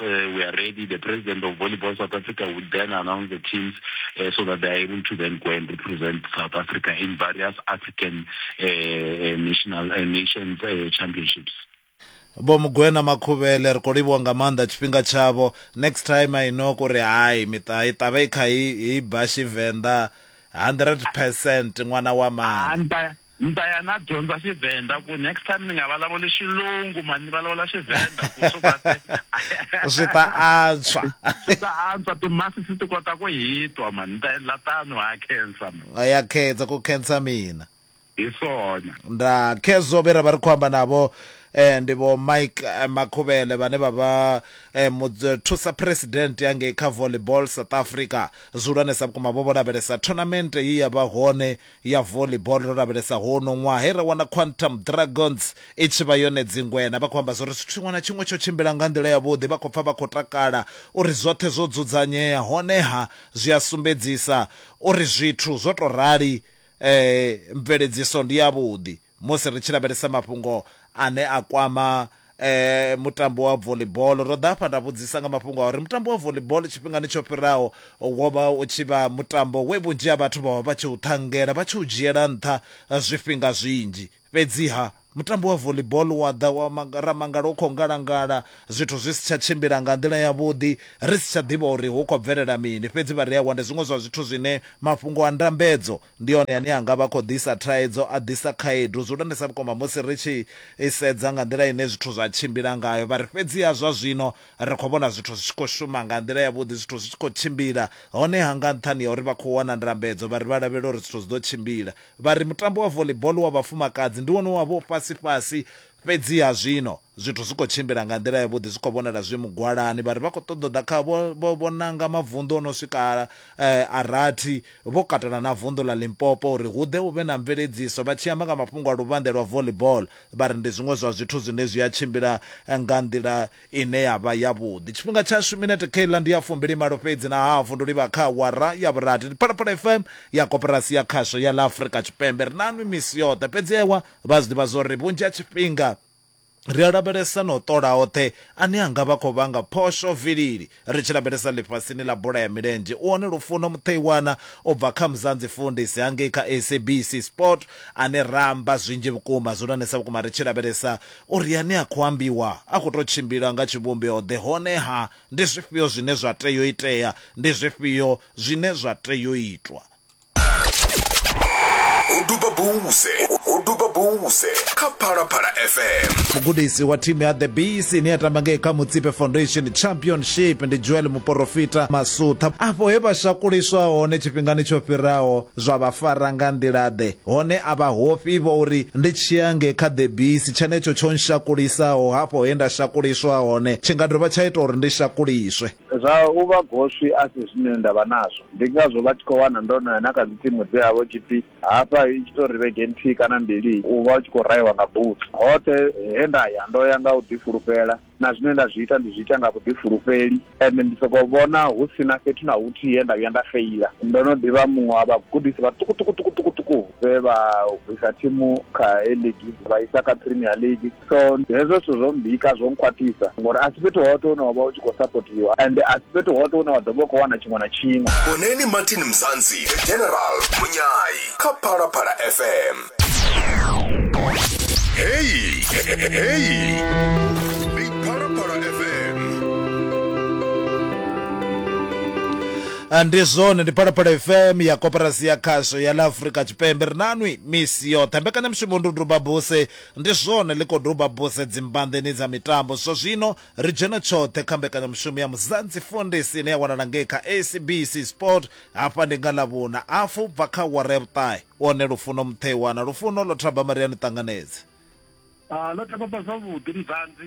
uh, we are ready. The president of Volleyball South Africa would then announce the teams uh, so that they are able to then go and represent South Africa in various African uh, uh national uh, nations uh, championships. vho mugwena makhuvhele ri khou livhiwa nga maanḓa tshifhinga tshavho next time i know kuri hai miṱa i ṱavhe i kha i bashi venḓa 100 percent ṅwana wa mani Ni ta ya na dyondza Xivhenda ku next time ni nga valavuli Xilungu mani ni valavula Xivhenda ku swi va se swi ta antswa swi ta antswa timasi si ti kota ku hitwa mani ni ta endla tano ha khensa mani ya khensa ku khensa mina hi swona nda khezo vhera vha ri khou amba navho eh, ndi vho mike eh, makhuvhele vhane vha vha eh, muthusa president ya ngei kha volleyball south africa zwihulwanesa vhukuma vho vho lavhelesa tournament ye ya vha hone ya volleyball ro lavhelesa huno ṅwaha he ra wana Quantum Dragons i tshi vha yone dzingwena. Vha khou amba zwo ri zwithu tshiṅwe na tshiṅwe tsho tshimbila nga nḓila yavhuḓi, vha khou pfa vha khou takala uri zwoṱhe zwo dzudzanyea honeha zwi a sumbedzisa uri zwithu zwo tou rali mveledziso ndi yavhuḓi. Musi ri tshi lavhelesa mafhungo ane a kwama mutambo wa volibolo, ro ḓa hafha nda vhudzisa nga mafhungo a uri mutambo wa volibolo tshifhingani tsho fhiraho wo vha u tshi vha mutambo we vhunzhi ha vhathu vha vha vha tshi u ṱhangela, vha tshi u dzhiela nṱha zwifhinga zwinzhi. Fhedziha mutambo wa volibolo wa ḓa wa manga, ra mangala u khou ngalangala, zwithu zwi si tsha tshimbila nga nḓila yavhuḓi, ri si tsha ḓivha uri hu khou bvelela mini. Fhedzi vha re awaa, ndi zwiṅwe zwa zwithu zwine mafhungo a ndambedzo Ndi one ane a nga vha khou ḓisa thaidzo, a ḓisa khaedu zwihulwanesa vhukuma musi ri tshi sedza nga nḓila ine zwithu zwa tshimbila ngayo. Vha ri, Fhedziha zwa zwino ri khou vhona zwithu zwi tshi khou shuma nga nḓila yavhuḓi, zwithu zwi tshi khou tshimbila. Honeha, nga nṱhani ha uri vha khou wana ndambedzo, vha ri vha lavhelela uri zwithu zwi ḓo tshimbila. Vha ri, Mutambo wa volleyball wa vhafumakadzi ndi wone wa vha u fhasi-fhasi, fhedziha zwino, Zwithu zwi khou tshimbila nga nḓila yavhuḓi, zwi khou vhonala zwi mugwalani. Vha ri vha khou ṱoḓa u ḓa kha vho vho vho nanga mavunḓu o no swika a rathi, vho katela na vunḓu ḽa Limpopo uri hu ḓe hu vhe na mveledziso. Vha tshi amba nga mafhungo a luvhanḓe lwa volleyball, vha ri ndi zwiṅwe zwa zwithu zwine zwi a tshimbila nga nḓila ine ya vha yavhuḓi. Tshifhinga tshashu, minete Kayla, ndi ya fumbilimalo fhedzi na hafu ndi u livha kha awara ya vhurathi. Ndi Phalaphala FM ya Koporasi ya Khasho ya ḽa Afrika Tshipembe. Ri naanwi misi yoṱhe, fhedzi ewa vha a zwi ḓivha zwa uri vhunzhi ha tshifhinga, Ri a lavhelesa na u ṱola oṱhe ane a nga vha a khou vhanga phosho vilili. Ri tshi lavhelesa ḽifhasini ḽa bola ya milenzhe, u hone Lufuno Mutheiwana u bva kha Mzansi Fundisi hangei kha SABC Sport ane ra amba zwinzhi vhukuma, zwihulwanesa vhukuma ri tshi lavhelesa uri ane a khou ambiwa a khou tou tshimbila nga tshivhumbeo-ḓe honeha ndi zwifhio zwine zwa tea u itea, ndi zwifhio zwine zwa tea u itwa. duba buse u duba buse kha phalaphala fm mugudisi wa thimu ya the bees ine ya tamba ngei kha mutsipe foundation championship ndi joel muporofita masutha afho he vha shakuliswa hone tshifhingani tsho fhiraho zwa vha fara nga nḓila-ḓe hone a vha hofhi vho uri ndi tshiya nge kha the bees tshenetsho tsho nshakulisaho hafho he nda shakuliswa hone tshi nga dovha tsha ita uri ndi shakuliswe Zwa u vha goswi a si zwine nda vha nazwo. Ndi ngazwo vha tshi khou wana ndo no ya na kha dzithimu dze ha vha hu tshi pfi hafha i tshi tou ri vhege nthihi kana mbili u vha u tshi khou rahiwa nga butsu. Hoṱhe he nda ya ndo ya nga u ḓifulufhela, na zwine nda zwi ita ndi zwi ita nga vhuḓifulufheli, ende ndi sokou vhona hu si na fhethu na huthihi he nda vhuya nda feila. Ndo no ḓi vha muṅwe wa vhagudisi vhaṱukuṱukuṱukuṱuku vhe vha bvisa thimu kha A-League vha isa kha Premier League. so hezwo zwithu zwo mbika zwo nkhwaṱhisa ngori a si fhethu hoṱhe hune wa vha u tshi khou sapotiwa ende a si fhethu hoṱhe hune wa ḓo vha u khou wana tshiṅwe na tshiṅwe vhoneni martin mzansi the general munyai kha phalaphala fm heyi heyi ndi phalaphala fm Ah, ndi zwone ndi phalaphala fm ya koporasi ya khasho ya ḽa afurika tshipembe ri nanwi misi yoṱhe mbekanyamushumo ndi u duba buse Ndi zwone, ḽi khou duba buse dzimbanḓeni dza mitambo zwa zwino. Ri dzhena tshoṱhe kha mbekanyamushumo ya Muzansi Foundis ine ya wanala ngei kha SABC Sport. Hafha ndi nga Ḽavhuna, hafu u bva kha awara ya vhuṱahe. U hone Lufuno Mutheiwa na Lufuno Ḽothabamariani Ṱanganedzi. Ḽothabama, Zwavhuḓi Muzansi,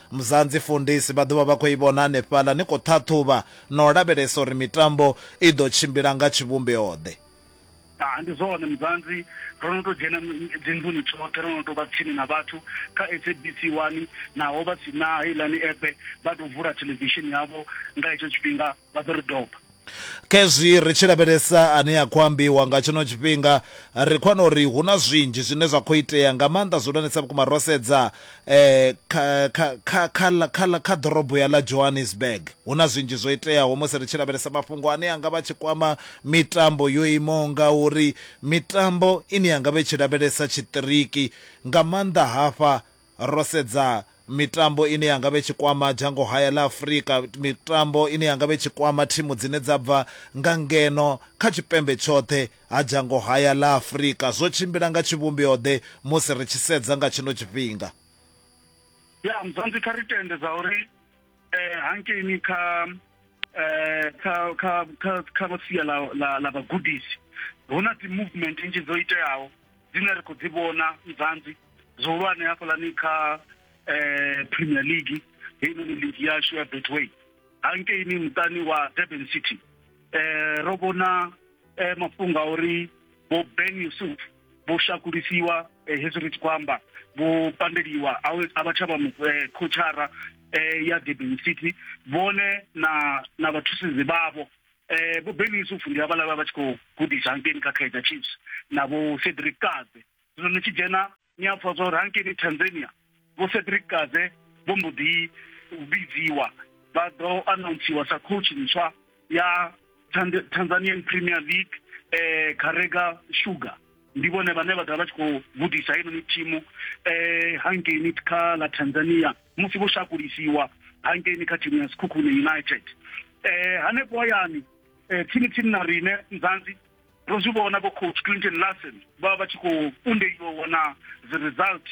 Mzansi Fundisi vha ḓo vha vha khou i vhona hanefhaḽa ni khou ṱhaṱhuvha na u lavhelesa uri mitambo i ḓo tshimbila nga tshivhumbeo-ḓe. Ha, ndi zwone Mzansi, ro no tou dzhena dzinḓuni tshoṱhe, ro no tou vha tsini na vhathu kha SABC 1, naho vha si na heiḽani app, vha tou vula theḽevishini yavho nga hetsho tshifhinga. vha ḓo ri doba khezwi ri tshi lavhelesa ane a khou ambiwa nga tshino tshifhinga ri khou wana uri hu na zwinzhi zwine zwa khou itea nga maanḓa zwihulwanesa vhukuma ro sedza um kha ḓorobo ya ḽa johannesburg hu na zwinzhi zwo iteaho musi ri tshi lavhelesa mafhungo ane anga vha tshi kwama mitambo yo imaho nga uri mitambo ine yanga vha i tshi lavhelesa tshiṱiriki nga maanḓa hafha ro sedza mitambo ine ya nga vha i tshi kwama dzhango haya ḽa Afrika, mitambo ine ya nga vha i tshi kwama thimu dzine dza bva nga ngeno kha tshipembe tshoṱhe ha dzhango haya ḽa Afrika, zwo tshimbila nga tshivhumbeo-ḓe musi ri tshi sedza nga tshino tshifhinga? Ya, Mzansi, kha ri tende zwauri. eh hankeini kha eh kha kha kha kha sia la la la vhagudisi hu na dzi movement nnzhi dzo iteaho dzine ri khou dzi vhona mzanzi zwihulwane hafhaḽani kha eh premier league heinoni league yashu ya betway hankeini muṱani wa durban city eh ro vhona eh mafhungo a uri vho ben yusuf vho shakulisiwa eh, hezwi ri tshi khou amba vho pandeliwa a we- a vha tsha vha mu- eh, khotshara eh, ya durban city vhone na na vhathusedzi vhavho eh vho Ben Yusuf ndi havhala vha vha tshi khou gudisa hangeni kha Kaizer Chiefs na vho Cedric Kaze zwino ni tshi dzhena ni a pfha zwa uri hangeni Tanzania Vho Cedric Kaze vho mbo ḓi vhidziwa vha ḓo anountsiwa sa coach ntswa ya Tanzanian Premier League eh Karega Sugar ndi vhone vhane vha ḓovha vha tshi khou gudisa heinoni thimu eh hangeini kha ḽa Tanzania musi vho shakulisiwa hangeini kha thimu ya Sekhukhune United eh hanefho hayani eh, tsini tsini na rine Nzanzi ro zwi vhona vho coach Clinton Larsen vha vha tshi khou undeliwa wana dzi result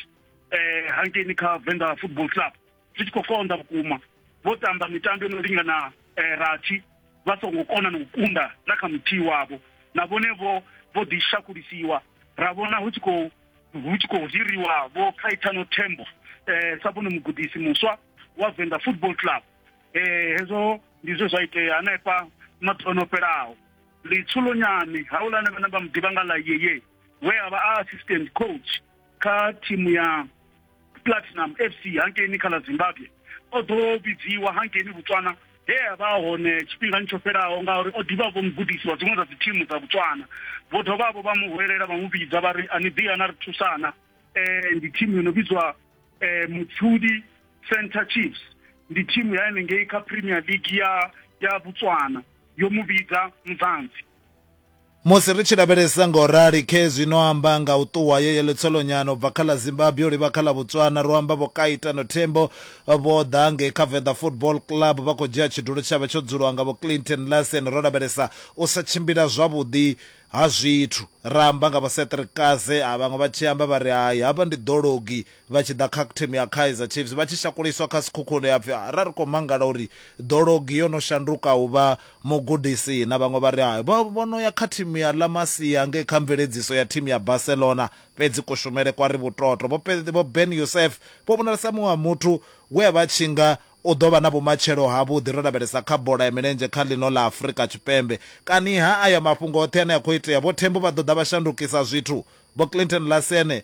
eh hangeni kha Venḓa Football Club zwi tshi khou konḓa vhukuma vho tamba mitambo yo no lingana eh, rathi vha songo kona na u kunda na kha muthihi wavho na vhone vho vho ḓi shakulisiwa ra vhona hu tshi khou hu tshi khou hiriwa vho Caetano Thembo eh sa vhone mugudisi muswa wa Venḓa Football Club eh hezwo ndi zwe zwa itea hanefha maḓuvha o fhelaho litshulonyani haulana vhana vha muḓivha nga ḽa yeye we a vha a assistant coach kha thimu ya platinum fc hankeini kha ḽa zimbabwe o ḓo vhidziwa hankeini botswana he a vha hone tshifhingani tsho fhelaho ngauri o ḓivha vho mugudisi wa dziṅwe dza dzi thimu dza botswana vho dovha vho vha mu huwelela vha mu vhidza vha ri a ni ḓi ana ri thusana um ndi thimu yo no vhidzwa um mutshudi center chiefs ndi thimu ya henengei kha premier league ya ya botswana yo mu vhidza muzanzi Musi ri tshi lavhelesa nga u rali khezwi no amba nga u ṱuwa yo yeḽo tsolonyana u bva kha ḽa Zimbabwe u livha kha ḽa Botswana, ro amba Vho Kaitano Thembo vho ḓa ngei kha Venḓa Football Club vha khou dzhia tshidulo tshavhe tsho dzuliwa nga Vho Clinton Larsen ro lavhelesa u sa tshimbila zwavhuḓi ha zwithu ra amba nga Vho Cedric Kaze, vhaṅwe vha tshi amba vha ri hai, havha ndi ḓologi vha tshi ḓa kha thimu ya Kaizer Chiefs vha tshi shakuliswa kha Sekhukhune ha pfi ra ri khou mangala uri Dologi yo no shanduka u vha mugudisi na vhaṅwe vha ri hai vho vho no ya kha thimu ya La Masia ngei kha mveledziso ya thimu ya Barcelona fhedzi kushumele kwa ri vhutoto. Vho Pe- Vho Ben Youssef vho vhonala sa muṅwe wa muthu we a vha tshi nga u ḓo vha na vhumatshelo havhuḓi ro lavhelesa kha bola ya milenzhe kha ḽino ḽa Afrika Tshipembe. Kani ha aya mafhungo oṱhe ane a khou itea, Vho Thembo vha ḓo ḓa vha shandukisa zwithu? Vho Clinton Lasene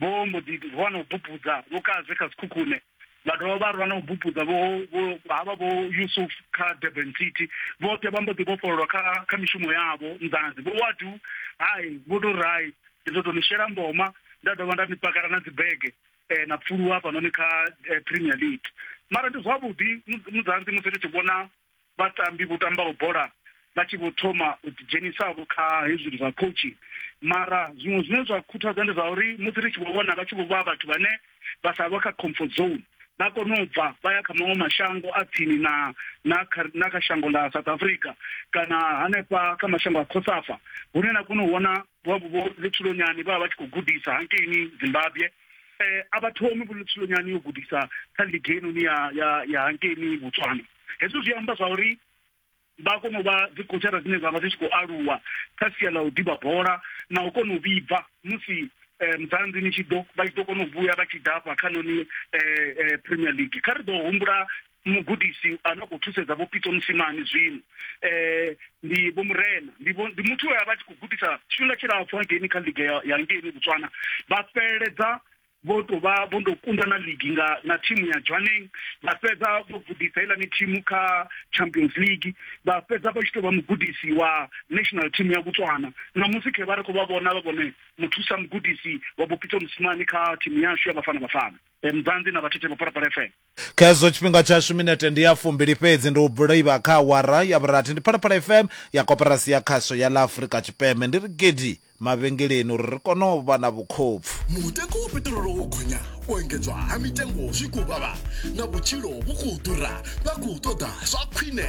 vho mbo ḓi rwa na u bupudza vho kaze kha sikhukhune vha dovha vha rwa na u bupudza vho havha vho yusuf kha durban city vhoṱhe vha mbo ḓi vhofhololwa kha kha mishumo yavho nḓanzi vho wadu hai vho to ri hai ndi ḓo tou ni shela mboma nda dovha nda ni pakala na dzibege um na pfuluwa hafhanoni kha eh, premier league mara ndi zwavhuḓi mudzanzi musi ri tshi vhona Vhatambi vho tambaho bola vha tshi vho thoma u ḓi dzhenisavho kha hezwi zwithu zwa coaching mara zwiṅwe zwine zwa khuthadza ndi zwa uri musi ri tshi vho vhona vha tshi vho vha vhathu vhane vha sa vha kha comfort zone vha kona u bva vha ya kha maṅwe mashango a tsini na na kha na kha shango ḽa South Africa kana hanefha kha mashango a Cosafa hune na kona u vhona vha vho Lutshulonyani vha vha tshi khou gudisa hangeini Zimbabwe a vha thomi vho Lutshulonyani yo gudisa kha ligi heinoni ya ya ya hangeini Botswana. hezwi zwi amba zwa uri vha kona u vha dzi khotshara dzine dza vha dzi tshi khou aluwa kha sia ḽa u ḓivha bola na u kona u vhibva musi eh, mudzanzi ni tshi ḓo vha tshi ḓo kona u vhuya vha tshi dafha kha noni eh, eh, premier league kha ri ḓo humbula mugudisi a no khou thusedza vho pitso musimani zwino um ndi vho murena ndi muthu we a vha tshi khou gudisa tshifhinga tshilapfhu hangeini kha liga ya hangeini botswana vha fheleledza vho tou vha vho ndo kunda na ligi nga na thimu ya Jwaneng vha fhedza vho gudisa heiḽani thimu kha Champions League vha fhedza vha tshi tou vha mugudisi wa national team ya Botswana ṋamusi khe vha ri khou vha vhona vha vhone muthusa mugudisi wa Bopitso Mosimane kha thimu yashu ya Bafana Bafana Mzanzi na Vhathethe Vhaphalaphala FM. Kha hezwo tshifhinga tshashu minete ndi ya fumbili fhedzi ndi u bulaiva kha awara ya vhurathi. Ndi Phalaphala FM ya Koporasi ya Khasho ya ḽa Afrika Tshipembe. Ndi ri gidi mavhengeleni uri ri kone u vha na vhukhopfu. Mutengo wa peṱirolo wo gonya, u engedzwa ha mitengo zwi khou vhavha na vhutshilo vhu khou ḓura, vha khou ṱoḓa zwa khwine.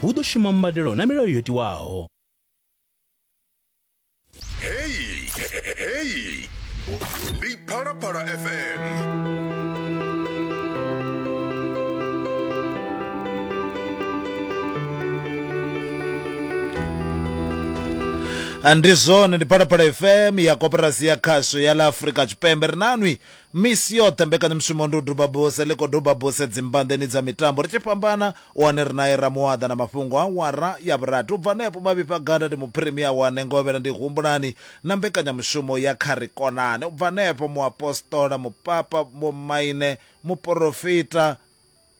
hu ḓo shuma mbadelo na milayo yo tiwaho heyi heyi ndi phalaphala fm ndi zwone ndi phalaphala fm ya koperasi ya khasho ya ḽa afrika tshipembe ri nanwi Misi yoṱhe mbekanyamushumo Ndi u Duba Buse ḽi khou duba buse dzimbanḓeni dza mitambo ri tshi fhambana. U hone ri nae Ramuwaḓa na mafhungo a awara ya vhurathi. U bva henefho Mavhifha Gada ndi Muphirimia wa Nengovhela ndi Humbulani na mbekanyamushumo ya Kha Ri Konane. U bva henefho Muapostola, Mupapa, Vhomaine, Muporofita,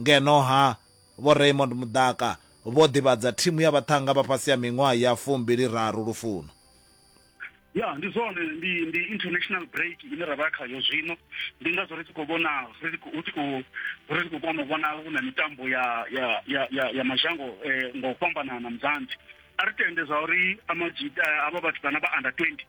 Ngeno-ha, Vho Raymond Mudaka vho ḓivhadza thimu ya vhaṱhannga vha fhasi ha miṅwaha ya fumbili raru lufuno. Ya, ndi zwone, ndi, ndi international break ine ra vha khayo zwino. Ndi ngazwo ri tshi khou vhona, ri tshi khou, hu tshi khou, ri tshi khou kona u vhona hu na mitambo ya, ya, ya, ya, ya mazhango eh, nga u fhambanana, Muzansi. A ri tende zwa uri Amajita, havha vhatukana vha under 20,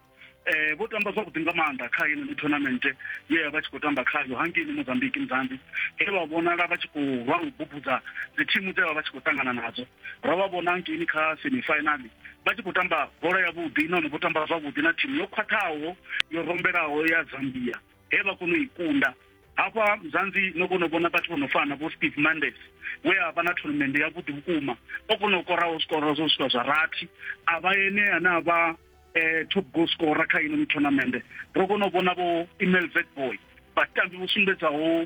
eh vho tamba zwavhuḓi nga maanḓa kha ino tournament ye ya vha tshi khou tamba khayo hangeini mozambique mzambi he vha vhonala vha tshi khou lwa u bubudza dzi thimu dze vha vha tshi khou ṱangana nadzo ro vha vhona hangeini kha semifinal vha tshi khou tamba bola yavhuḓi nahone vho tamba zwavhuḓi na thimu yo khwaṱhaho yo rombelaho ya zambia he vha kona u i kunda hafha mzanzi no kona u vhona vhathu vho no fana vho steve mandes we a vha na tournament yavhuḓi vhukuma o kona u koraho zwikoro zwo swika zwa rathi a vha ene ane a vha eh, top goal scorer kha ino mithonamende ro kona u vhona vho email vet boy vhatambi vho sumbedzaho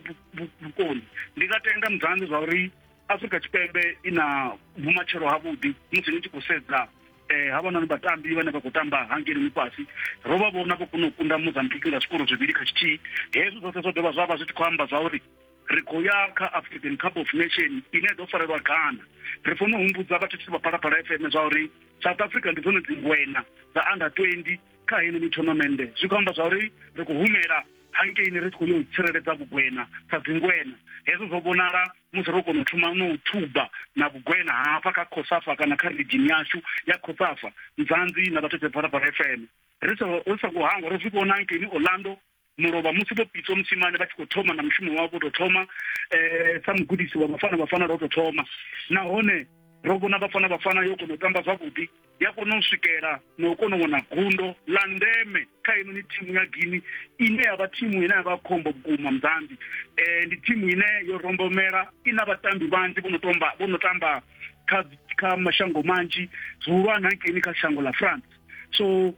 vhukoni ndi nga tenda mudzanzi zwa uri afrika tshipembe i na vhumatshelo havhuḓi musi ni tshi khou sedza eh ha vhona vhatambi vhane vha khou tamba hangeni mufhasi ro vha vhona vho kona u kunda mozambique nga zwikoro zwivhili kha tshithihi hezwo zwoṱhe zwo dovha zwa vha zwi tshi khou amba zwa uri ri khou ya kha african cup of nation ine ḓo farelwa ghana ri fanela u humbudza vhathethisi vha phalaphala fm zwa uri south africa ndi dzone dzingwena dza under 20 kha heneni tournamende zwi khou amba zwa uri ri khou humela hankeini ri tshi khou yo u tsireledza vhugwena sa dzingwena hezwo zwo vhonala musi ro kona u thoma no u thuba na vhugwena hafha kha khosafa kana kha ridzhini yashu ya khosafa nzanzi na vhathethisi phalaphala fm ri sa ri sa kuhangwa ro zwi vhona hankeini orlando mulovha musi vho pitswa musimane vha tshi khou thoma na mushumo wavho vho tou thoma um sa mugudisi wa vhafana vhafana ro tou thoma nahone ro vhona vhafana vhafana yo kona u tamba zwavhuḓi ya kona u swikela na u kona u wana gundo ḽa ndeme kha heinoni thimu ya gini ine ya vha thimu ine ya vha khombo vhukuma muzambi um ndi thimu ine yo rombomela i na vhatambi vhanzhi vho no tomba vho no tamba kha kha mashango manzhi zwihulwane hankeini kha shango ḽa france so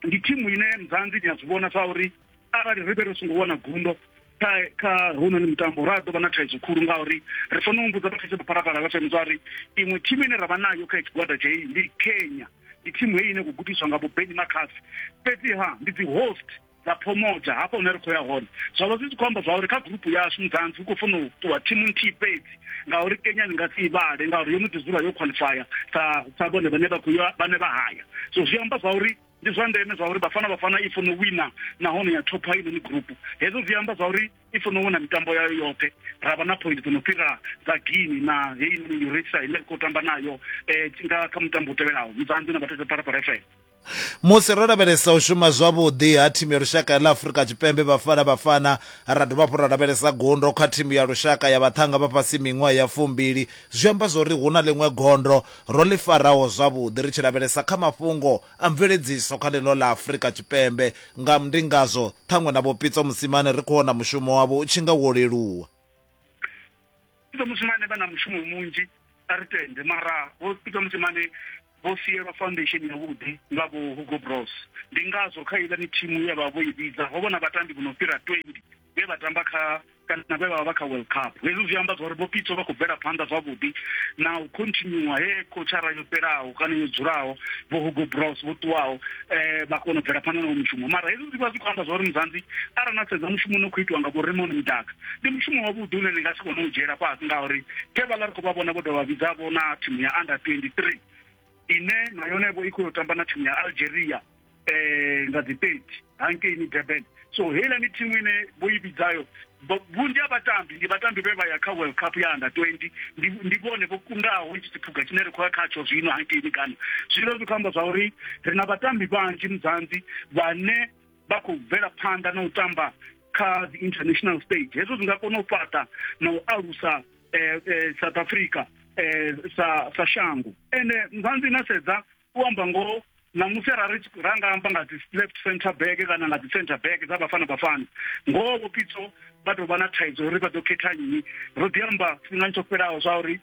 ndi thimu ine mzanzi ni a zwi vhona sa uri arali ri vhe ri songo wana gundo kha kha hounoni mutambo ra ḓo vha na thaidzo khulu ngauri ri fanela u humbudza vhathetshe vhaphalaphala vha fm zwa uri iṅwe thimu ine ra vha nayo kha tshigwada tsha heyi ndi kenya ndi thimu heyi ine khou gudiswa nga vho beni makhasi fhedziha ndi dzi host dza phomota hafha hune ri khou ya hone zwa vha zwi tshi khou amba zwa uri kha gurupu yashu mudzanzi ri khou funa u ṱuwa thimu nthihi fhedzi ngauri kenya ni nga si ivhale ngauri yo no ḓi dzula yo khwaḽifaya sa sa vhone vhane vha khou ya vhane vha haya so zwi amba zwa uri ndi zwa ndeme zwa uri vhafana vhafana i funa u wina nahone ya thopha inoni gurupu hezwo zwi amba zwa uri i funa u wina mitambo yayo yoṱhe ra vha na point dzo no fhira dza guini na heinoni urisa ine ri khou tamba nayo um nga kha mutambo u tevhelaho mudzanzi na vhathetsha phalaphala fm Musi ro lavhelesa u shuma zwavhuḓi ha thimu ya lushaka ya ḽa Afrika Tshipembe Bafana Bafana, ra dovha hafhu ra lavhelesa gundo kha thimu ya lushaka ya vhaṱhanga vha fhasi miṅwaha ya fumbili, zwi amba zwori hu na ḽiṅwe gondo ro ḽi faraho zwavhuḓi ri tshi lavhelesa kha mafhungo a mveledziso kha ḽino ḽa Afrika Tshipembe. Nga ndi ngazwo ṱhaṅwe na Vho Pitso Mosimane ri khou vhona mushumo wavho u tshi nga wo leluwa. peter mosimane vha na mushumo munzhi a ri tende mara vho peter mosimane vho sielwa foundation yavhuḓi nga vho hugo bros ndi ngazwo kha iḽani thimu ya vha vho i vhidza ho vhona vhatambi vho no fhira 20 vhe vha tamba kha kana vhe vha vha vha kha world cup hezwi zwi amba zwauri vho pitso vha khou bvela phanḓa zwavhuḓi na u continua he khotshara yo fhelaho kana yo dzulaho vho hugo bros vho ṱuwaho eh, vha kona u bvela phanḓa nawo mushumo mara hezwi zwi vha zwi khou amba zwa uri muzanzi arali na sedza mushumo une khou itiwa nga vho remoni mudaka ndi mushumo wavhuḓi une ni nga si kone u dzhiela fhasi ngauri khe vhaḽa ri khou vha vhona vho dovha vhidzavho na thimu ya under 23 ine na yone vho i khou yo tamba na thimu ya algeria um nga dzi 30 hankeini durban so heiḽani thimu ine vho i vhidzayo vhunzhi ha vhatambi ndi vhatambi vhe vha ya kha world cup ya under 20 ndi vhone vho kundaho itshi tshiphuga tshine ri khou ya khatsho zwino hankeini kana zwino zwi khou amba zwa uri ri na vhatambi vhanzhi muzanzi vhane vha khou bvela phanḓa na u tamba kha the international stage hezwo zwi nga kona u fhaṱa na u alusa eh, eh, south africa eh, sa, sa shango ende muzanzi na sedza u amba ngoho ṋamusi arali ra nga amba nga dzi left center back kana nga dzi center back dza bafana bafana ngoho vho pitso vha tou vha na thaidzo uri vha ḓo khetha nnyi ro ḓi amba tshifhingani tsho fhelaho zwa uri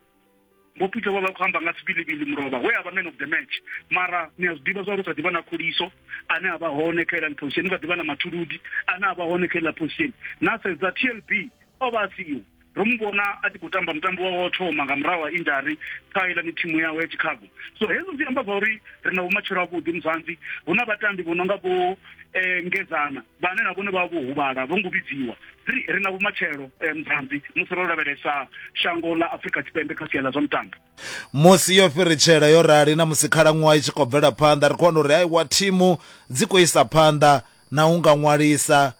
vho pitso vha vha khou amba nga sibilibili mulovha we a vha man of the match mara ni a zwi ḓivha zwa uri kha ḓivha na khuliso ane a vha hone kha iḽani position kha ḓivha na mathuludi ane a vha hone kha iḽa position na sedza tlb o vha a siho ro mu vhona a tshi khou tamba mutambo wawe wa u thoma nga murahu ha injari kha iḽani thimu yawe ya chicago so hezwo zwi amba zwa uri ri na vhumatshelo avhuḓi muzanzi hu na vhatambi vho no nga vho um ngedzana vhane na vhone vha vho huvhala vho ngo vhidziwa ri ri na vhumatshelo um muzanzi musi ro lavhelesa shango ḽa afrika tshipembe kha sia ḽa zwa mutambo musi yo fhiritshela yo rali na musi khalaṅwaha i tshi khou bvela phanḓa ri khou wana uri haiwa thimu dzi khou isa phanḓa na u nga ṅwalisa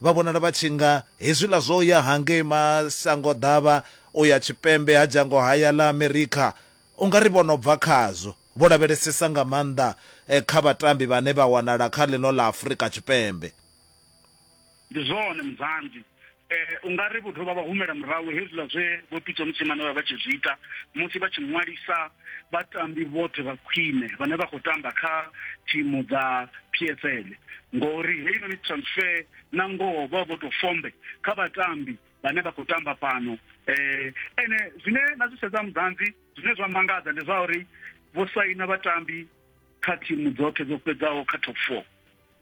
Vha vhonala vha tshi nga hezwiḽa zwo ya hangei masangoḓavha u ya tshipembe ha dzhango haya ḽa Amerikha. U nga ri vho no bva khazwo, vho lavhelesesa nga maanḓa kha vhatambi vhane vha wanala kha ḽino ḽa Afrika Tshipembe. Ndi zwone Muzambi. U nga ri vho dovha vha humela murahu hezwiḽa zwe Vho Pitso Mosimane vha vha vha tshi zwi ita musi vha tshi ṅwalisa vhatambi vhoṱhe vha khwine vhane vha khou tamba kha thimu dza PSL ngori heinoni transfer na ngoho vha vho to fombe kha vhatambi vhane vha khou tamba fhano eh ene zwine na zwi sedza mudanzi zwine zwa mangadza ndi zwa uri vho saina vhatambi kha thimu dzoṱhe dzo fhedzaho kha top 4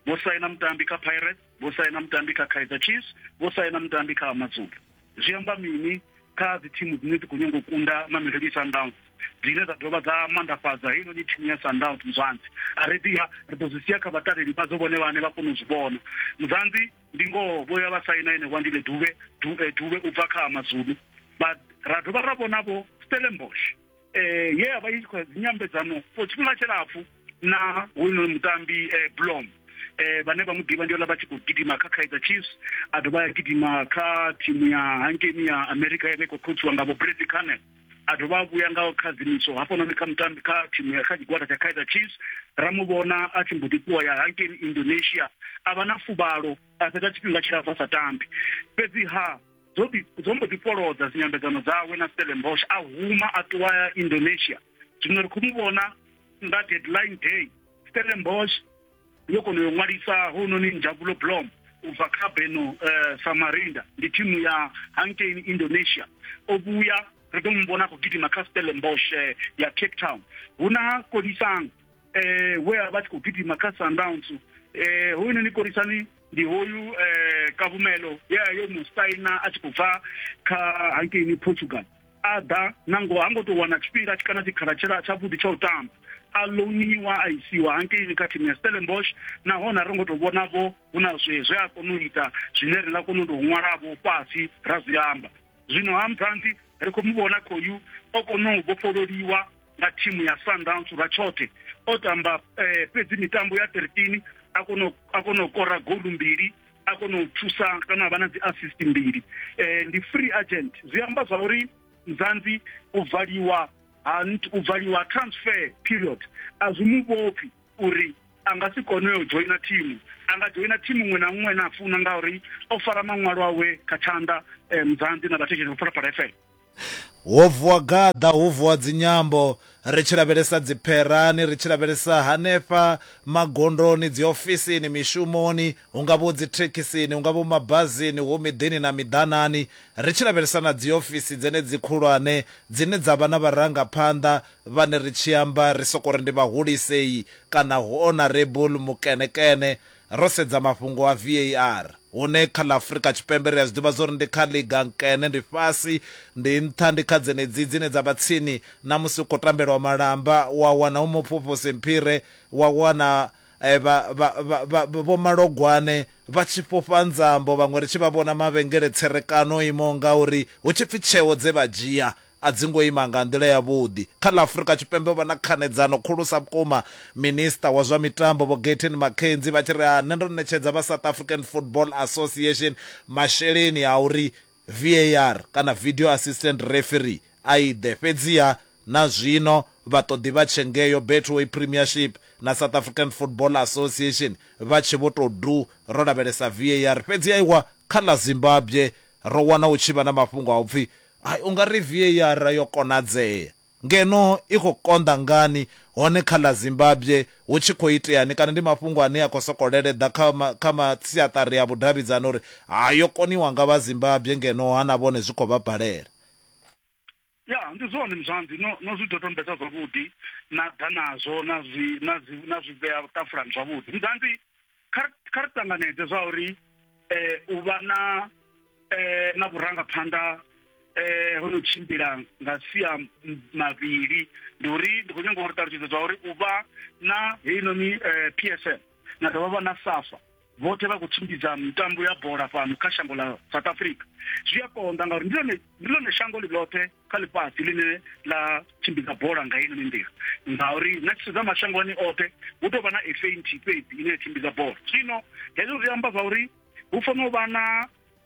vho saina mutambi kha pirates vho saina mutambi kha kaizer chiefs vho saina mutambi kha amazulu zwi amba mini kha dzi thimu dzine dzi khou nyanga u kunda mamelodi sundowns dzine dza dovha dza mandafhadza heinoni thimu ya sundowns muzwanzi a ri ḓiha ri ḓo zwi sia kha vhataleli vhadzo vhone vhane vha kona u zwi vhona muzwanzi ndi ngoho vho ya vha saina ene wandile duvhe duvhe eh, u bva kha amazulu ra dovha ra vhonavho stellenbosch eh ye avha i tshi khou nyambedzano for tshifhinga tshilapfu na hoyunoni mutambi eh blom eh vhane vha mu ḓivha ndi ola vha tshi khou gidima kha kaizer chiefs a dovha ya gidima kha thimu ya hankeni ya america ya vha i khou khotsiwa nga vho bradley canel a dovha a vhuya nga khadzimiso hafhanoni kha mutambi kha thimu ya kha tshigwada tsha kaizer chiefs ra mu vhona a tshi mbo ḓi ṱuwa ya hankeni indonesia a vha na fuvhalo a fhedza tshifhinga tshilapfu a sa tambi fhedzi ha dzo ḓi- dzo mbo ḓi fholodza dzinyambedzano dzawe na Stellenbosch a huma a ṱuwa ya Indonesia zwino ri khou mu vhona nga deadline day Stellenbosch yo kona u yo ṅwalisa hounoni Njabulo Blom u bva kha Beno eh, Samarinda ndi thimu ya hankeini Indonesia o vhuya ri ḓo mu vhona a khou gidima kha Stellenbosch eh, ya Cape Town hu na Kolisang eh, we a vha tshi khou gidima kha sundowns um eh, hoyunoni korisani ndi hoyu um eh, kavhumelo ye a yo mu saina a tshi khou bva kha hankeini portugal a ḓa nango ha ngo tou wana tshifhinga kana tshikhala tshela tshavhuḓi tsha u tamba a louniwa a isiwa hankeini kha thimu ya stellenbosh nahone a ri ngo tou vhonavho hu na zwe zwe a kona u ita zwine ri nga kona u tou ṅwalavho fhasi ra zwi amba zwino ha musanzi ri khou mu vhona khoyu o kona u vhofhololiwa nga thimu ya sundowns lwa tshoṱhe o tamba eh, fhedzi mitambo ya 13 a kona a kona u kora golu mbili a kona u thusa kana vha na dzi assist mbili eh, ndi free agent zwi amba zwa uri mzanzi u valiwa ha u valiwa transfer period a zwi mu vhopfi uri a nga si kone u joina thimu a nga joina thimu muṅwe na muṅwe na a funa ngauri o fara maṅwalo awe kha tshanḓa eh, muzanḓi na vhathetshelesi vha phalaphala fm ho vuwa gaḓa ho vuwa dzinyambo ri tshi lavhelesa dzipherani ri tshi lavhelesa hanefha magondoni dziofisini mishumoni hu nga vho dzithekhisini hu nga vho mabazini hu miḓini na miḓanani ri tshi lavhelesa na dziofisi dzenedzi khulwane dzine dza vha na vharangaphanḓa Vhane ri tshi amba ri sokou ri ndi vhahulisei kana hu Honourable Mukenekene, ro sedza mafhungo a VAR, hune kha ḽa Afrika Tshipembe ri a zwi ḓivha zwa uri ndi kha ḽiga nkene, ndi fhasi, ndi nṱha, ndi kha dzenedzi dzine dza vha tsini na musi hu khou tambelwa malamba, wa wana hu Muphuphuse Mphire, wa wana vha, vha, vha, vha, Vho Malogwane vha tshi fhufha nzambo, vhaṅwe ri tshi vha vhona mavhengele tserekano o imaho ngauri, hu tshi pfi tsheo dze vha dzhia a dzi ngo ima nga nḓila yavhuḓi kha ḽa Afrika Tshipembe. O vha na khanedzano khulusa vhukuma Minisiṱa wa zwa Mitambo Vho Gayton McKenzie vha tshi ri, Nṋe ndo ṋetshedza vha South African Football Association masheleni a uri VAR kana Video Assistant Referee a i ḓe, fhedziha na zwino vha ṱoḓi vha tshe ngeo Betway Premiership na South African Football Association vha tshe vho tou du ro lavhelesa VAR. Fhedzi aiwa, kha ḽa Zimbabwe ro wana hu tshi vha na mafhungo a u pfi Hai, u nga ri VAR yo konadzea, ngeno i khou konḓa ngani, hone kha ḽa Zimbabwe hu tshi khou iteani? Kana ndi mafhungo ane a khou sokou leleḓa kha kha masiaṱari a vhudavhidzani uri, Ha, yo koniwa nga vha Zimbabwe, ngeno ha na vhone zwi khou vha balela. Ya, ndi zwone muzwanzi, no, no zwi dodombedza zwavhuḓi, na ḓa nazwo na zwi, na zwi, na zwi vhea ṱafulani zwavhuḓi. Muzwanzi, kha kha ri tanganedze zwa uri eh u vha na eh na vhurangaphanḓa eh ho no tshimbila nga sia mavhili ndi uri ndi khou nyanga uri ṱalutshedza zwa uri u vha na heinoni eh, PSL na dovha vha na SAFA vhoṱhe vha khou tshimbidza mitambo ya bola fhano kha shango ḽa South Africa zwi a konḓa ngauri ndi ḽone ndi ḽone shango ḽi ḽoṱhe kha ḽifhasi ḽine ḽa tshimbidza bola nga ino nḓila ngauri na tshi sedza mashangoni oṱhe hu tou vha na fa nthihi fhedzi ine ya tshimbidza bola zwino hezwo zwi amba zwa uri hu fanela u vha na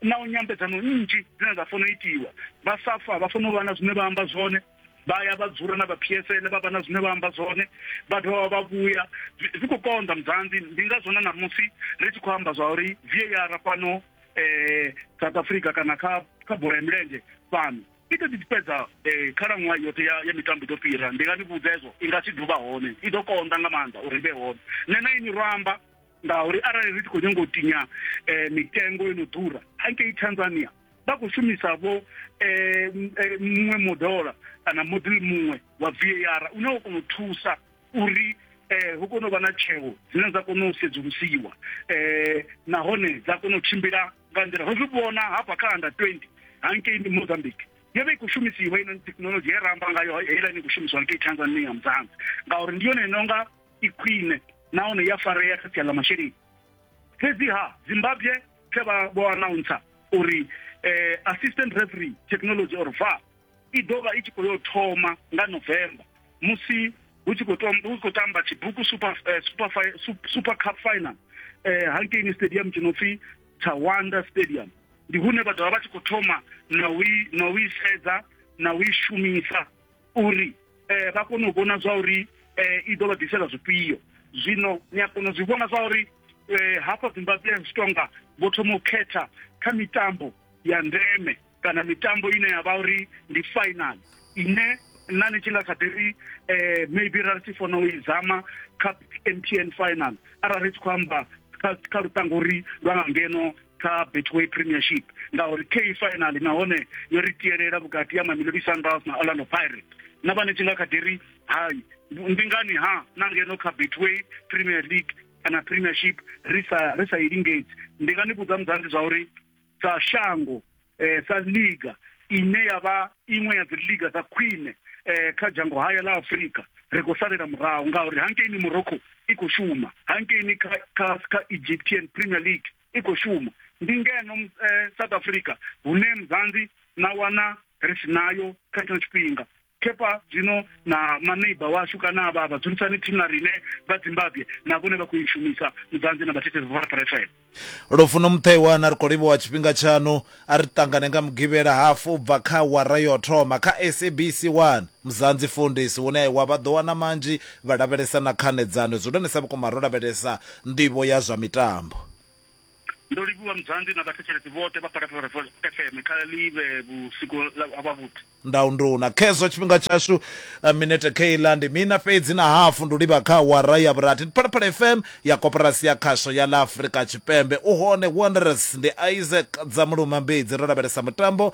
na u nyambedzano nnzhi dzine dza fanela u itiwa vha safa vha fanela u vha na zwine vha amba zwone vha ya vha dzula na vha PSL vha vha na zwine vha amba zwone vha dovha vha vhuya zwi khou konḓa mudzanzi ndi ngazwo na ṋamusi ri tshi khou amba zwa uri VAR fhano eh South Africa kana kha kha bola ya milenzhe fhano i ḓo ḓi fhedza eh, khalaṅwaha yoṱhe ya ya mitambo ḓo fhira ndi nga ni vhudza hezwo i nga si duvha hone i ḓo konḓa nga maanḓa uri i vhe hone nṋe na ini ro amba ngauri arali ri tshi khou nyanga u tinya eh, mitengo yo no ḓura hangei tanzania vha khou shumisa vho eh, m- eh, muṅwe modola kana model muṅwe wa var une wa kona u thusa uri eh hu kone u vha na tsheo dzine dza kona u sedzulusiwa eh nahone dza kona u tshimbila nga nḓila ro zwi vhona hafha kha under 20 hangei ndi Mozambique yo vha i khou shumisiwa ino thekhinolodzhi ye ra amba ngayo heiḽa ni khou shumisiwa ngei Tanzania mudzanzi ngauri ndi yone inonga i khwine nahone ya farea kha sia ḽa masheleni fhedziha Zimbabwe khe vha vho announcer uri eh assistant referee technology or VAR i ḓo vha i tshi khou yo thoma nga November musi hu tshi khou tamba tshibuku super eh, super super cup final eh hankeini stadium tshi no pfi Tawanda stadium ndi hune vha dovha vha tshi khou thoma na u na u isedza na u shumisa uri eh vha kone u vhona zwa uri eh i ḓo vha ḓisela zwifhio zwino ni a kona u zwi vhona zwa uri eh hafha Zimbabwe zwi tonga vho thoma u khetha kha mitambo ya ndeme kana mitambo ine ya vha uri ndi final ine nna ni tshi nga kha ḓi ri um maybe ra ri tshi fona u i zama kha m t n final arali ri tshi khou amba kha luṱango uri lwa nga ngeno kha betway premiership ngauri k final nahone yo ri tielela vhukati ya mamelodi sundowns na orlando pirate na vha ni tshi nga kha ḓi ri hai ndi ngani ha na ngeno kha betway premier league kana premiership ri sa ri sa i lingedzi ndi nga ni vhudza mudzanzi zwa uri sa shango eh, sa liga ine ya vha iṅwe ya dziliga dza khwine eh, kha dzhango haya ḽa afurika ri khou salela murahu ngauri hankeini morocco i khou shuma hankeini kha, kha, kha egyptian premier league i khou shuma ndi ngeno eh, south africa hune mzanzi na wana ri si nayo kha tshino tshifhinga khefha zwino na maneiba washu kana avha vhadzulisani thimu na rine vha dzimbabwe na vhone vha khou i shumisa mudzanzi na vhathetshelesi vha vhorapara fm lufuno muṱhewa na ri khou livhuwa tshifhinga tshaṋu a ri ṱangane nga mugivhela hafu u bva kha wara yo thoma kha sabc 1 muzanzi fundisi hune wa vha ḓo wana manzhi vha lavhelesa na khanedzano zwihulwanesa vhukuma ro lavhelesa nḓivho ya zwa mitambo Ndo livhuwa Mudzandi na vhathetshelesi vhoṱhe vha Phalaphala FM. Kha ḽi vhe vhusiku ha vhavhuḓi. Ndau nduna khezwo tshifhinga tshashu eh, minete kheiḽa ndi mina fhedzi na hafu ndi livha kha awara ya vhurathi ndi phalaphala fm ya koporasi ya khasho ya ḽa afurika tshipembe u hone wanderers ndi isaac dzamuluma mbedzi ro lavhelesa mutambo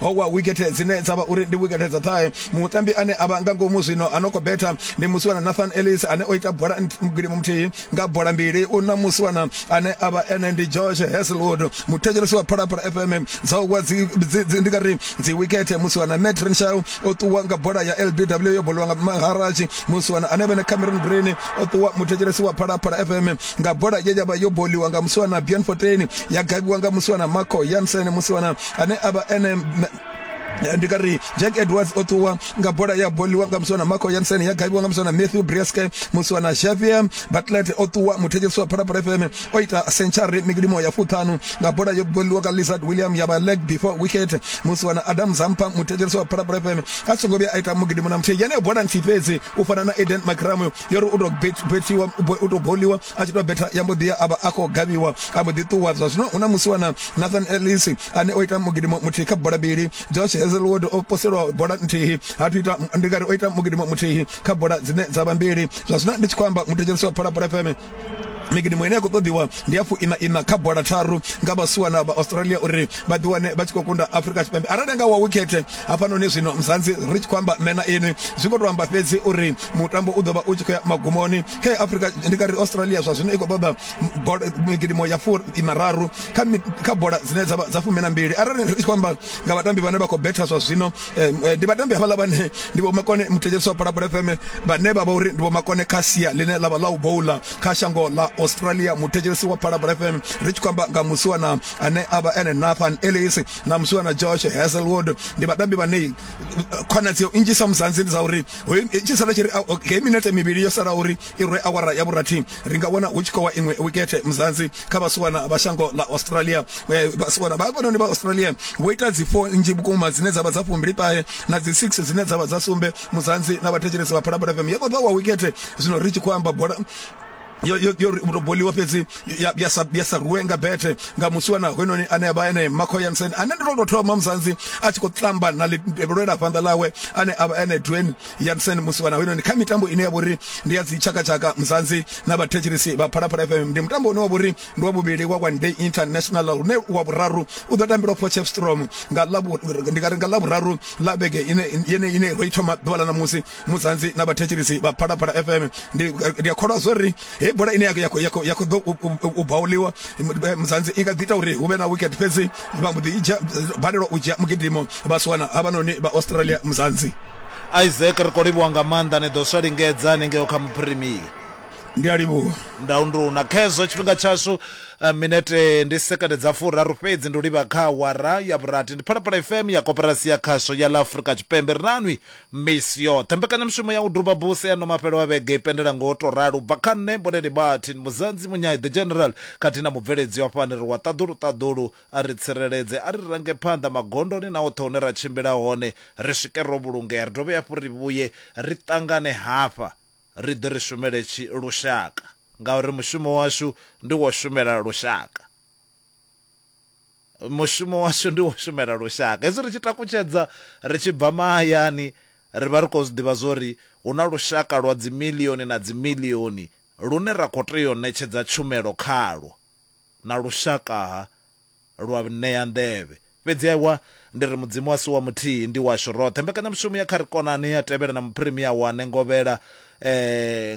ho wa wikethe dzine dza vha uri ndi wikethe dza ṱhahe mutambi ane a vha nga ngomu zwino a no khou betha ndi musiwana nathan ellis ane o ita bola mugilimo muthihi nga bola mbili u na musiwana ane a vha ene ndi george heselwood muthetshelesi wa phalaphala fm dza u wa ndi nga ri dzi wikethe musiwana matt renshaw o ṱuwa nga bola ya lbw yo boliwa nga maharaji musiwana ane vhene cameron green o ṱuwa muthetshelesi wa phalaphala fm nga bola ye ya vha yo boliwa nga musiwana bjorn fotain ya gavhiwa nga musiwana marco yansen musiwana ane avha ene ndi nga ri jack edwards o ṱuwa nga bola ya boliwa nga muswana marco yansen ya gaibiwa nga muswana matthew brieske muswana xavier batlet o ṱuwa muthetshelisi wa phalaphala fm o ita century mikilimo ya fuṱhanu nga bola yo boliwa nga lizard william ya vha leg before wicket muswana adam zampa muthetshelisi wa phalaphala fm a songo vhuya a ita mugidimo na muthihi yeneyo bola nthihi fhedzi u fana na eden macramo yo ri u to bethiwa u to boliwa a tshi to betha ya mbo ḓi ya avha a khou gavhiwa a mbo ḓi ṱuwa zwa zwino hu na musi wana Nathan Ellis ane o ita mugidimo muthihi kha bola mbili Josh Hazelwood o poselwa bola nthihi ha thu ita ndi ngari o ita mugidimo muthihi kha bola dzine dza vha mbili zwa zwino ndi tshi khou amba muthetshelesi wa Phalaphala FM Migidi muine ya khou ṱoḓiwa ndi ya fuiṋa iṋa kha bola tharu nga vhasiwana vha Australia uri vha ḓiwane vha tshi khou kunda Afrika Tshipembe arali nga wa wikhethe hafhanoni zwino muzanzi ri tshi khou amba nṋe na inwi zwi khou tou amba fhedzi uri mutambo u ḓo vha u tshi khou ya magumoni kha Afrika ndi nga ri Australia zwa zwino i khou ṱoḓa migidimo ya fuiṋa raru kha bola dzine dza vha dza fumi na mbili arali ri tshi khou amba nga vhatambi vhane vha khou betha zwa zwino ndi vhatambi havhaḽa vhane ndi vho makone muthetshelesi wa phalaphala fm vhane vha vha uri ndi vho makone kha sia ḽine ḽa vha ḽa u boula kha shango ḽa australia muthetshelesi wa phalaphala fm ri tshi khou amba nga musiwana ane a vha ene nathan ellis na musiwana josh hazelwood ndi vhatambi vhane khonadzeo nnzhi sa muzanzi ndi dza uri hoyu tshi sala tshi ri hei minete mivhili yo sala uri I rwe awara ya vhurathi, ri nga wana hu tshi khou wa iṅwe wikethe muzanzi kha vhasiwana vha shango ḽa Australia. Vhasiwana vha hafhanoni vha Australia vho ita dzi four nnzhi vhukuma dzine dza vha dza fumbili ṱahe na dzi six dzine dza vha dza sumbe muzanzi na vhathetshelesi vha Phalaphala FM. Yo ṱoḓa wa wikethe zwino ri tshi khou amba bola yo yo yo to boliwa fhedzi ya ya sa ya sa ruwe nga bethe nga musiwana hoyunoni ane avha ene Marco Jansen ane ndo to thoma muzanzi a tshi khou tamba na lwela fhanḓa ḽawe ane avha ene Dwayne Jansen Musiwana hoyunoni kha mitambo ine ya vhori ndi ya dzi tshakatshaka Mzansi na vhathetshelesi vha Phalaphala FM ndi mutambo une wa vhori ndi wa vhuvhili wa One Day International une wa vhuraru u ḓo tambelwa Potchefstroom nga ḽa ndi nga ri nga ḽa vhuraru ḽa vhege ine yene ine ro i thoma ḓuvha ḽa ṋamusi Mzansi na vhathetshelesi vha Phalaphala FM ndi ndi a kholwa zwori he bola ine ya ya ya ya kho ḓo u bauliwa Mzansi i nga ḓi ita uri hu vhe na wicket fhedzi vha mbo ḓi balelwa u dzhia mugidimo vha siwana havhanoni vha Australia Mzansi isaac ri khou livhuwa nga maanḓa ni ḓo swa lingedza hanengeo kha muphirimii ndi a livhuwa ndaunduna khezwo tshifhinga tshashu eh, minete ndi sekende dza furaru fhedzi ndi u livha kha wara ya vhurathi ndi phalaphala fm ya koperasi ya khasho ya la afurika tshipembe ri nanwi misi yoṱhe mbekanyamushumo ya u duba buse ya no mafhelo wa vhege i pendela ngo to ralo u bva kha nṋe mboneni martin muzanzi munyai the general khathihi na mubveledzi wa fhani ri wa ṱaḓulu ṱaḓulu A ri tsireledze, a ri range phanḓa magondoni na hoṱhe hune ra tshimbila hone, ri swike ro vhulungea, ri dovhe hafhu ri vhuye ri ṱangane hafha ri ḓe ri shumele tshi lushaka ngauri mushumo washu ndi wo shumela lushaka. Mushumo washu ndi wo shumela lushaka. Hezwi ri tshi takutshedza ri tshi bva mahayani ri vha ri khou zwi ḓivha zwo ri hu na lushaka lwa dzimilioni na dzimilioni lune ra khou tea u ṋetshedza tshumelo khalwo. na lushakaha lwa vnea nḓevhe. Fhedzi ewa, ndi ri Mudzimu a si wa muthihi, ndi washu roṱhe. Mbekanyamushumo ya Kha Ri Konane ya tevhela na Muphirimiya wa Nengovhela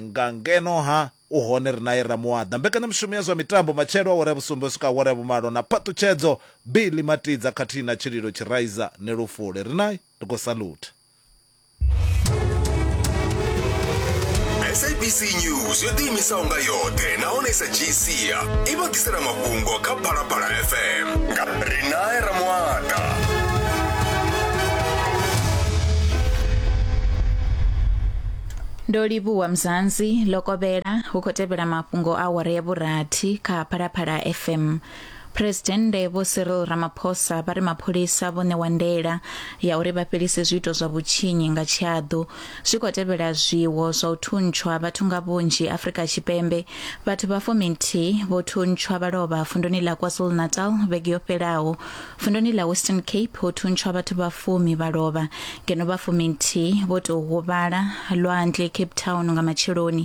nga ngeno ha u hone ri nae Ramuwaḓa. Mbekanyamushumo ya zwa mitambo matshelo awara ya vhusumbe u swika awara ya vhumalo na phaṱhutshedzo Billy Matidza khathihi na Tshililo Tshiraiza ni Lufule. Ri nae, ri khou salutha. sabc news yo ḓiimisaho nga yoṱhe nahone sa gcia i vha ḓisela mafhungo kha phalaphala fm nga rinae ramwata ndo livhuwa mzansi lokovhela hu khou tevhela mafhungo a awara ya vhurathi kha phalaphala fm Phresidennde Vho Cyril Ramaphosa vha ri mapholisa vho ṋewa ndaela ya uri vha fhelise zwiito zwa vhutshinyi nga tshiaḓu zwi khou tevhela zwiwo zwa u thuntshwa vhathu nga vhunzhi Afrika Tshipembe. Vhathu vha fuminthihi vho thuntshwa vha lovha vunduni ḽa KwaZulu-Natal vhege yo fhelaho. Vunduni ḽa Western Cape ho thuntshwa vhathu vha fumi vha lovha ngeno vha fuminthihi vho tou huvhala lwanzhe Cape Town nga matsheloni.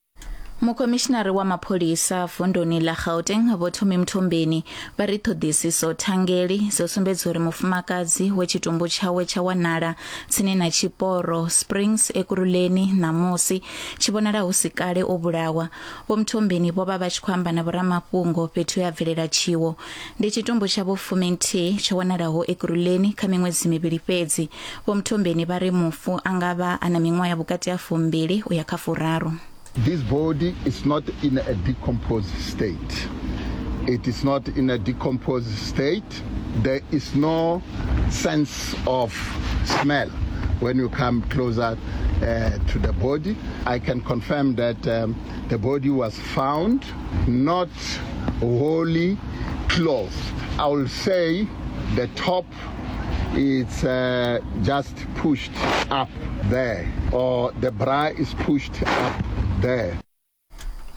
mukomishinari wa mapholisa vunduni ḽa gauteng vho thomi mthombeni vha ri ṱhoḓisiso thangeli dzo sumbedza uri mufumakadzi we tshitumbu tshawe tsha wanala tsini na tshiporo springs ekuruleni ṋamusi tshi vhonala hu si kale o vhulawa vho mthombeni vho vha vha tshi khou amba na vhoramafhungo fhethu ya bvelela tshiwo Ndi tshitumbu tsha vho fuminthihi tsho wanalaho Ekurhuleni kha miṅwedzi mivhili fhedzi. Vho Mthombeni vha ri mufu a nga vha a na miṅwaha ya vhukati ha fumbili u ya kha furaru. This body is not in a decomposed state. It is not in a decomposed state. There is no sense of smell when you come closer uh, to the body. I can confirm that um, the body was found not holy cloth. I will say the top it's uh, just pushed up there or the bra is pushed up there.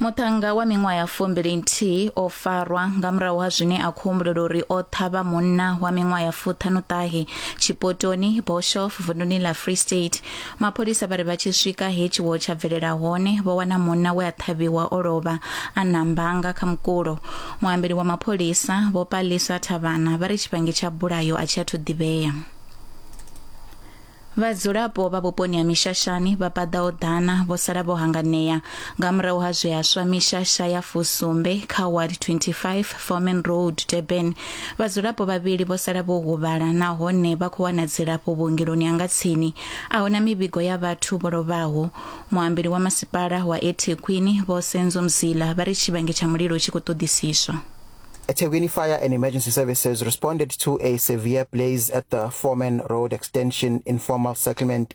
muṱhannga wa miṅwaha ya fumbili nthihi o farwa nga murahu ha zwine a khou humbulela uri o ṱhavha munna wa miṅwaha ya fuṱhanuṱahe tshipotoni boshof vunduni ḽa free state Mapholisa vha ri vha tshi swika he tshiwo tsha bvelela hone vho wana munna we a ṱhavhiwa o lovha a na mbanga kha mukulo. Muambeli wa mapholisa Vho Palisa Thavhana vha ri tshivhangi tsha bulayo a tshi athu ḓivhea. Vhadzulapo vha vhuponi ha Mishashani vha paḓaho ḓana vho sala vho hanganea nga murahu ha zwe ha swa mishasha ya fusumbe kha ward 25 Foreman Road Durban Vhadzulapo vhavhili vho sala vho huvhala nahone vha khou wana dzilafho vhuongeloni ha nga tsini. A hu na mivhigo ya vhathu vho lovhaho. Muambeli wa masipala wa eThekwini, Vho Senzo Mzila, vha ri tshivhangi tsha mulilo tshi khou ṱoḓisiswa. eThekwini Fire and Emergency Services responded to a severe blaze at the Foreman Road Extension Informal Settlement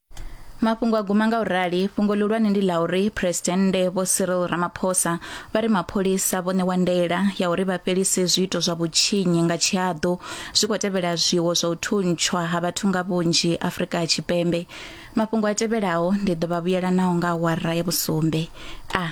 mafhungo a guma nga u rali fhungo ḽihulwane ndi ḽa uri phresidennde vho cyril ramaphosa vha ri mapholisa vho ṋewa ndaela ya uri vha fhelise zwiito zwa vhutshinyi nga tshihaḓu zwi khou tevhela zwiwo zwa u thuntshwa ha vhathu nga vhunzhi afrika tshipembe mafhungo a tevhelaho ndi ḓo vha vhuyelanaho nga awara ya vhusumbe a ah.